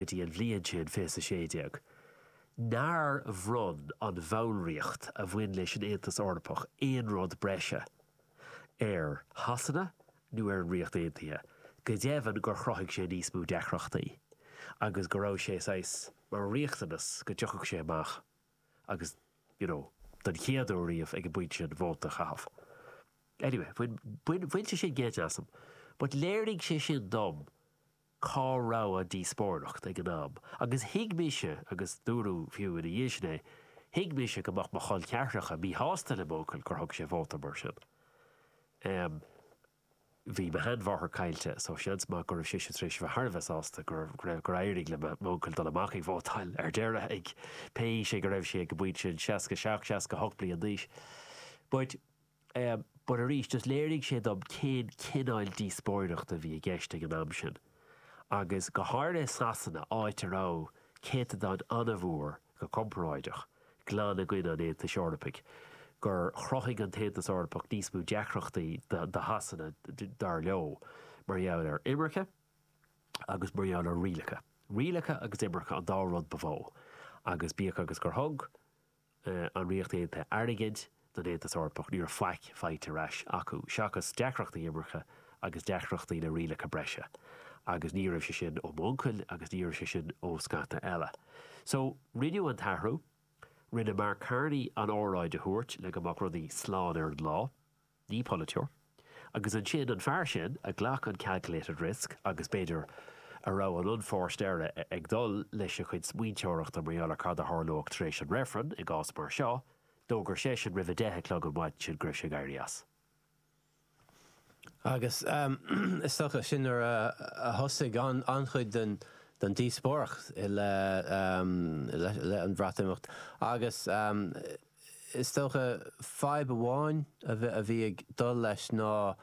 go dtí an bhliain sin, fiche 16, nár bhronn an bhallraíocht a bhain leis an Aontas Eorpach aon rud breise ar Shasana nó ar an Ríocht Aontaithe, go deimhin gur chruthaigh sé níos mó deacrachtaí agus go raibh sé saghas mar riachtanas go dtiocfadh sé amach agus, you know, don chéad uair riamh ag an bpointe sin, vóta a chaitheamh. Anyway, bhain sé sin geit asam but léirigh sé sin dom, cá raibh an díospóireacht ag an am agus thuig mise, agus dúradh fiú ina dhiaidh sin é, thuig mise go mbeadh mo chol ceathracha míshásta le m'uncail gur thug sé vóta mar sin. Em. bhí mo sheanmháthair caillte so seans maith go raibh sise tar éis a bheith thar a bheith sásta go raibh, go raibh, gur éirigh le m'uncail dul amach ag vótáil ar deireadh ag, pé aois é go raibh sé ag an bpointe sin, 67, 68 bliain d'aois. But. But arís, is léirigh sé dom cén cineál díospóireachta a bhí i gceist ag an am sin, agus go háirithe i Sasana, áit a raibh céatadán an-mhór, go comparáideach, glan i gcoinne an Aontais Eorpaigh, gur chruthaigh an tAontas Eorpach níos mó deacrachtaí do Shasana, dar leo, mar gheall ar imirce agus mar gheall ar rialacha. Rialacha agus imirce an dá rud ba mhó, agus bíodh agus gur thug, an Ríocht Aontaithe airgead don Aontas Eorpach, ní raibh faic faighte ar ais acu, seachas deacrachtaí imirce agus deacrachtaí le rialacha breise. Agus ní raibh sé sin ó m'uncail agus ní raibh sé sin ó scata eile. So, rinneadh an t-athrú. Rinne Mark Carney an óráid a thabhairt le go mbeadh rudaí slán ar an lá. ní polaiteoir. Agus ansin an fear sin a ghlac an calculated risk agus, b'fhéidir, a raibh an unforced error ag dul lena chuid smaointeoireachta mar gheall ar cad a tharlódh tar éis an reifrinn i gcás mar seo, d'fhógair seisean roimh a deich a chlog an mhaidin sin go raibh sé ag éirí as. Agus is dócha sin nuair a thosaigh an-chuid den díospóireacht i leith an Bhreatimeacht agus. Is dócha, fadhb amháin a bhí ag dul leis ná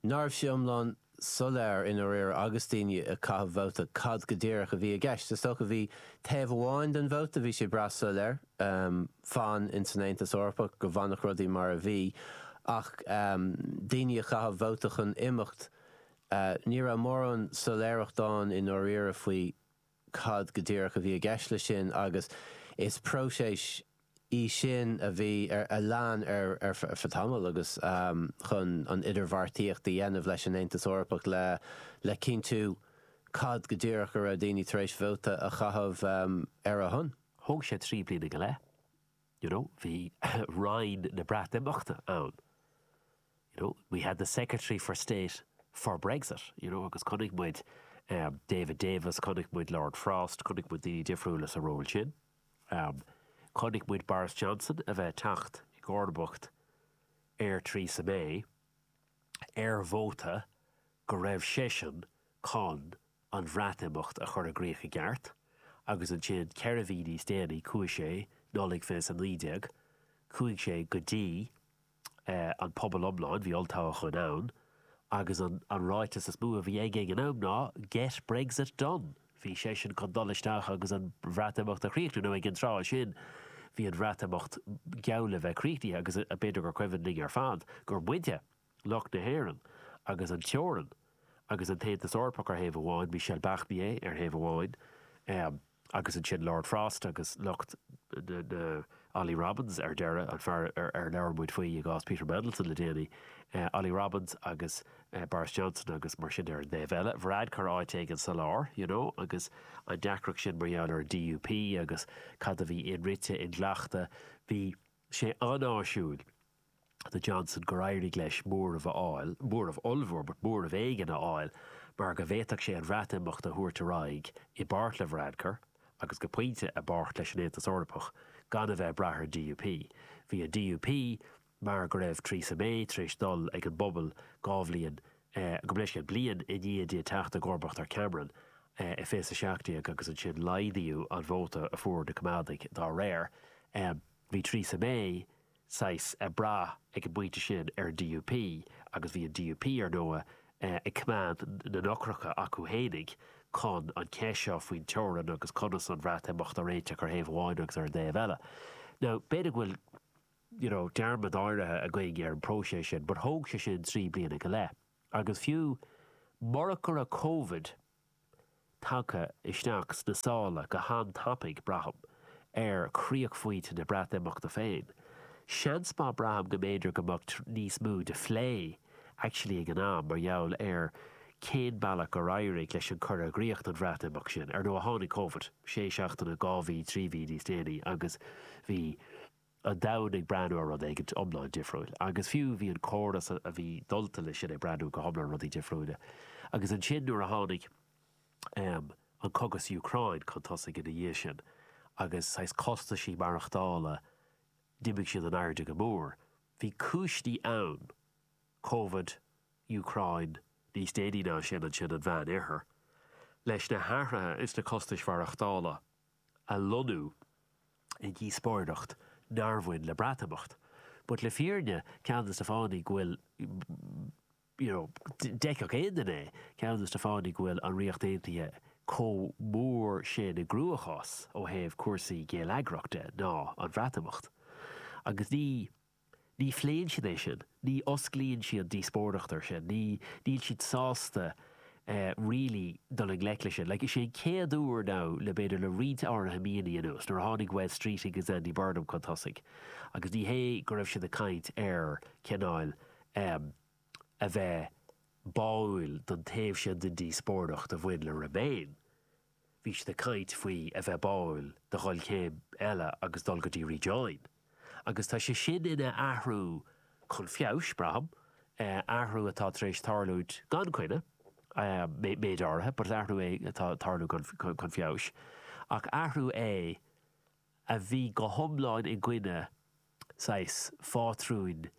nach raibh sé iomlán soiléir i ndáiríre agus daoine ag caitheamh vóta cad go díreach a bhí i gceist. Is dócha bhí taobh amháin den vóta, bhí sé breá soiléir, fan ins an Aontas Eorpach, go bhfanfadh rudaí mar a bhí, ach daoine ag caitheamh vóta chun imeacht, ní raibh mórán soiléireacht ann i ndáiríre faoi. cad go díreach a bhí i gceist leis sin agus is próiseas í sin a bhí ar a lean ar feadh tamaill agus chun an idirbheartaíocht a dhéanamh leis an Aontas Eorpach le le cinntiú cad go díreach a raibh daoine tar éis vóta a chaitheamh ar a shon. Thóg sé trí bliana go leith, you know, bhí Roinn na Breatimeachta ann. you know, we had the Secretary for State for Brexit, you know, agus chonaic muid David Davis, chonaic muid Lord Frost, chonaic muid daoine difriúla sa ról sin. Chonaic muid Boris Johnson a bheith ag teacht i gcomharbacht ar Theresa May ar vóta go raibh seisean chun an Bhreatimeacht a chur i gcríoch i gceart agus ansin ceithre mhí níos déanaí chuaigh sé, Nollaig 2019, chuaigh sé go dtí. an pobal iomlán, bhí olltoghchán ann, agus an ráiteas is mó a bhí aige ag an am ná Get Brexit done! Bhí seisean chun dul isteach agus an Bhreatimeacht a chríochnú, nó ag an tráth sin bhí an Bhreatimeacht geall le bheith críochnaithe agus b'fhéidir gur cuimhin linn ar fad gur muide, lucht na hÉireann, agus an teorainn, agus an tAontas Eorpach ar thaobh amháin, Michel Barnier ar thaobh amháin, Agus ansin Lord Frost agus lucht na Olly Robbins ar deireadh, an fear ar labhair muid faoi i gcás Peter Mandelson le déanaí. Olly Robbins agus Boris Johnson agus mar sin ar an dtaobh eile. Varadkar áit éigin sa lár, you know, agus an deacracht sin mar gheall ar an DUP agus cad a bhí inrite, inghlachta. Bhí sé an-áisiúil. do Johnson gur éirigh leis móramh a fháil, móramh ollmhór, but móramh éigin a fháil, mar go bhféadfadh sé an Bhreatimeacht a thabhairt ar aghaidh, i bpáirt le Varadkar, agus go pointe, i bpáirt leis an Aontas Eorpach, gan a bheith ag brath ar an DUP. Bhí an DUP, mar go raibh Theresa May tar éis dul chuig an bpobal dhá bhliain, gabh mo leithscéal, bliain i ndiaidh di teacht i gcomharbacht ar Cameron, i 2017 agus ansin laghdaíodh an vóta a fuair na Coimeádaigh dá réir, bhí Theresa May, saghas ag brath ag an bpointe sin ar an DUP agus bhí an DUP, ar ndóigh, ag coimeád na n-eochracha acu fhéinig chun an cheist seo faoin teorainn agus conas an Bhreatimeacht a réiteach ar thaobh amháin agus ar an dtaobh eile. Now, b'fhéidir go bhfuil you know dearmad áirithe againn ar an bpróiseas sin but thóg sé sin trí bliana go leith agus fiú murach go raibh Covid tagtha isteach sna sála go han-tapaidh, braithim, ar chríochphointe na Breatimeachta féin. Seans maith, braithim, go mb'fhéidir go mbeadh níos mó de phlé actually ag an am mar gheall ar cén mbealach gur éirigh leis an cur i gcrích don Bhreatimeacht sin. Ar ndóigh, tháinig Covid sé seachtaine, dhá mhí, trí mhí níos déanaí agus bhí. an domhain ag breathnú ar rud éigin iomlán difriúil, agus fiú bhí an córas a bhí ag déileáil leis sin ag breathnú go hiomlán ar rudaí difriúla. Agus ansin nuair a tháinig an cogadh sa Úcráin chun tosaigh ina dhiaidh sin, agus saghas costaisí maireachtála, d'imigh siad in airde go mór. Bhí cúiseanna ann, Covid, Úcráin, níos déanaí ná sin ansin an Meánoirthear, leis na hathruithe sna costais mhaireachtála. a lonnú i ndíospóireacht nár bhain le Breatimeacht. But le fírinne, ceann des na fáthanna go bhfuil you know d'fheicfeadh aon duine é, ceann des na fáthanna go bhfuil an Ríocht Aontaithe chomh mór sin i gcruachás ó thaobh cúrsaí geilleagrachta de ná an Bhreatimeacht. Agus ní. Ní phléann siad é sin, ní osclaíonn siad díospóireacht air sin, ní, níl siad sásta really dul i ngleic leis sin. Like, is é an chéad uair ann le, b'fhéidir, le roinnt áirithe míonna anuas, nuair a tháinig Wes Streeting agus Andy Burnham chun tosaigh agus ní hé go raibh siad ag caint ar cineál ehm a bheith báúil don taobh sin den díospóireacht a bhain le Remain, Bhí siad ag caint faoi a bheith báúil do dhul céim eile agus dul go dtí Rejoin, agus tá sé sin ina athrú chun feabhais, braithim, athrú atá tar éis tarlúint gan coinne, méid áirithe, but athrú é atá ag tarlú chun feabhais, ach athrú é a bhí go hiomlán i gcoinne, saghas, phátrúin.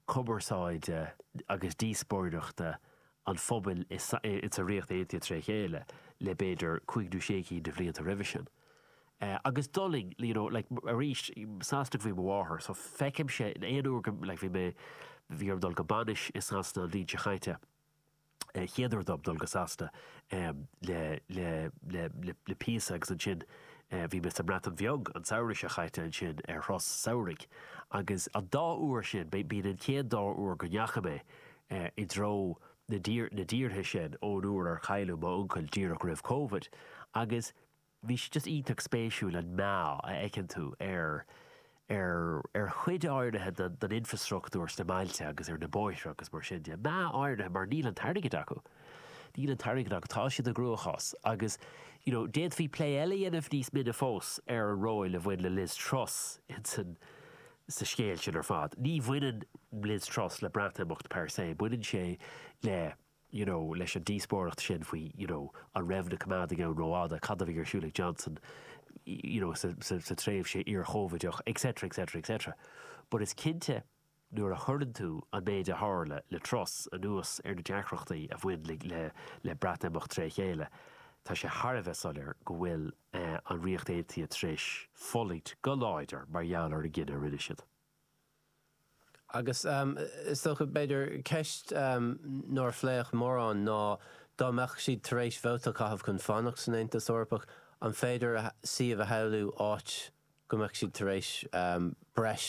cumarsáide agus díospóireachta an phobail insa Ríocht Aontaithe tré chéile le b'fhéidir cúig nó sé cinn de bhlianta roimhe sin. Agus d'fhulaing you know like arís Sasana ab í mo mháthair so feicimse aon uair go like bhí mé bhí orm dul go bainis i Sasana an bhliain seo chaite, chéaduair dom dul go Sasana le píosa agus ansin bhí mé sa mBreatain Bheag an samhradh seo chaite ansin ar thuras samhraidh agus an dá uair sin, b'in an chéad dá uair go ndeachaigh mé i dtreo na dtíortha sin ón uair ar cailleadh m'uncail díreach roimh Covid agus. bhí sé just iontach spéisiúil an meath a fheiceann tú ar ar ar chuid áirithe den den infrastruchtúr sna mbailte agus ar na bóithre agus mar sin de meath áirithe mar níl an t-airgead acu níl an t-airgead acu tá siad i gcruachás agus you know d'fhéadfaí plé eile dhéanamh níos mine fós ar an ról a bhain le Liz Truss insan sa scéal sin ar fad ní bhaineann Liz Truss le Breatimeacht per se baineann sé le you know, leis an díospóireacht sin faoi, you know, an raibh na Coimeádaigh ann rófhada, cad a bhí ar siúl ag Johnson, you know, sa tréimhse iar-Chóivideach, etc, etc, etc. But is cinnte, nuair a chuireann tú an méid a tharla le Truss anuas ar na deacrachtaí a bhain le Breatimeacht tré chéile, tá sé thar a bheith soiléir go bhfuil an Ríocht Aontaithe tar éis fulaingt go láidir mar gheall ar an gcinneadh a rinne siad. Agus is dócha, b'fhéidir, ceist nár phléadh mórán ná, dá mbeadh siad tar éis vóta a chaitheamh chun fanacht san Aontas Eorpach, an féidir suíomh a shamhlú áit go mbeadh siad tar éis breis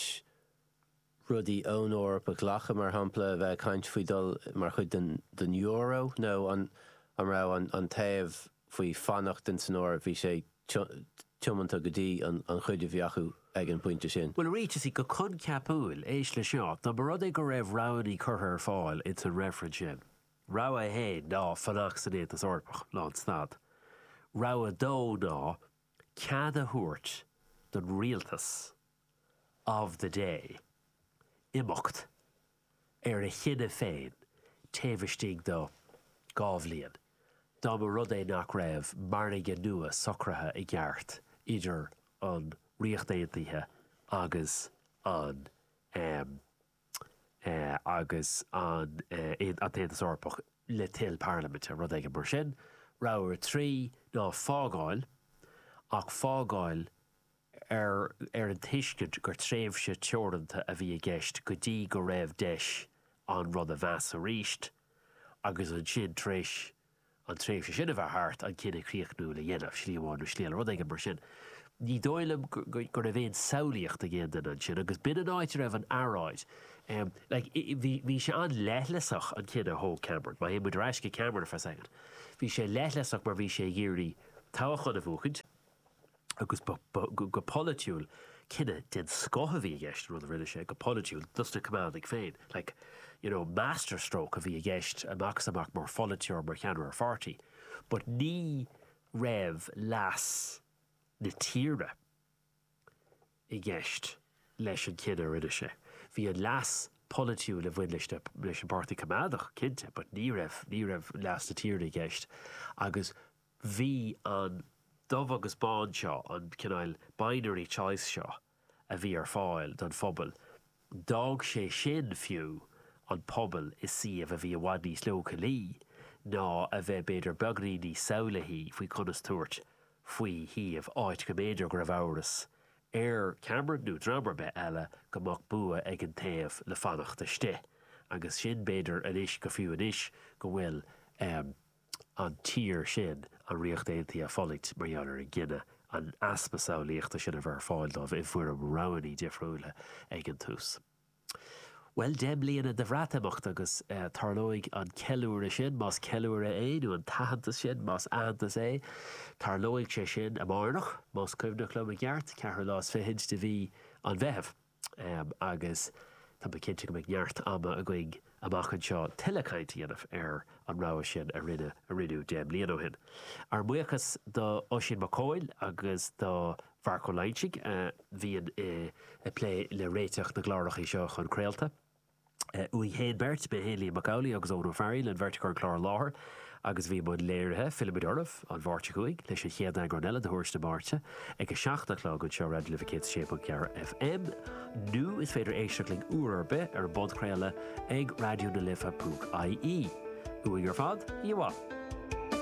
rudaí ón Eoraip a ghlacadh, mar shampla, a bheith ag caint faoi dhul mar chuid den Euro, nó an raibh an taobh faoi fanacht in san Eoraip, bhí sé tiomanta go dtí an chuid a bhí acu ag an bpointe sin. Bhuel, arís, just go coincheapúil, éist leis seo, dá mba rud é go raibh roghannaí curtha ar fáil in san reifreann sin, rogha 1 ná fanacht san Aontas Eorpach, lán stad, rogha 2 ná cead a thabhairt don rialtas of the day imeacht ar a chinneadh féin taobh istigh do dhá bhliain dá mba rud é nach raibh margadh nua socraithe i gceart idir an Ríocht Aontaithe agus an agus an tAontas Eorpach le toil parlaiminte, rud éigin mar sin. Rogha 3, ná fágáil, ach fágáil. ar an tuiscint gur tréimhse teoranta a bhí i gceist go dtí go raibh deis ann rud a mheas arís agus ansin, tar éis an tréimhse sin a bheith thart, an cinneadh críochnúil a dhéanamh, slí amháin nó slí eile, rud éigin mar sin. Ní dóigh liom go raibh aon samhlaíocht ag aon duine ansin agus b'in an áit a raibh an earráid. Bhí sé an-leithleasach, an cinneadh a thóg Cameron, má théann muid ar ais go Cameron for a second, bhí sé leithleasach mar bhí sé ag iarraidh toghchán a bhuachaint, agus go polaitiúil, cinneadh den scoth a bhí i gceist, an rud a rinne sé, go polaitiúil, dos na Coimeádaigh féin, like, you know, master stroke a bhí i gceist amach is amach mar pholaiteoir, mar cheannaire pháirtí, but ní raibh leas na tíre i gceist leis an chinneadh a rinne sé. Bhí an leas polaitiúil a bhain leis an bPáirtí Coimeádach, cinnte, but ní raibh, ní raibh leas na tíre i gceist agus Bhí an dubh agus bán seo, an cineál binary choice seo a bhí ar fáil don phobal, d'fhág sé sin fiú an pobal i suíomh a bhí i bhfad níos leochailí ná a bheith b'fhéidir beagainín níos samhlaithí faoi conas tabhairt faoi shuíomh áit go mb'fhéidir go raibh amhras ar Cameron, nó dream ar bith eile, go mbeadh bua ag an taobh le fanacht istigh. Agus sin b'fhéidir anois go fiú anois go bhfuil. an tír sin an Ríocht Aontaithe ag fulaingt mar gheall ar an gcinneadh, an easpa samhlaíochta sin a bheith ar fáil dóibh i bhfoirm roghanna difriúla ag an tús. Bhuel, deich mbliana de Bhreatimeacht agus tarlóidh an ceiliúradh sin, más ceiliúradh é, nó an t-aitheantas sin, más aitheantas é, tarlóidh sé sin amárach, más cuimhneach liom i gceart, ceathrú lá is fichid de mhí an Mheithimh. agus tá mé cinnte go mbeidh neart ama againn amach anseo tuilleadh cainte a dhéanamh ar an rogha sin a rinneadh deich mbliain ó shin. Ár mbuíochas do Oisín Mac Comhaill agus do Mharc Ó Loingsigh a bhíonn ag plé le réiteach na gcláracha seo chun craolta. uainn féin beirt, mé féin Liam Mac Amhlaigh agus Eoghan Ó Fearghaíl An bheirt a chuir an clár i láthair agus a bhí i mbun léirithe fillfimid oraibh an Mháirt seo chugainn leis an chéad eagrán eile de Thuairisc na Máirte ag a seacht a chlog anseo ar Raidió na Life 106.4 FM nó is féidir éisteacht linn uair ar bith ar an bpodchraoladh ag raidionalife.ie. Uainn ar fad, oíche mhaith.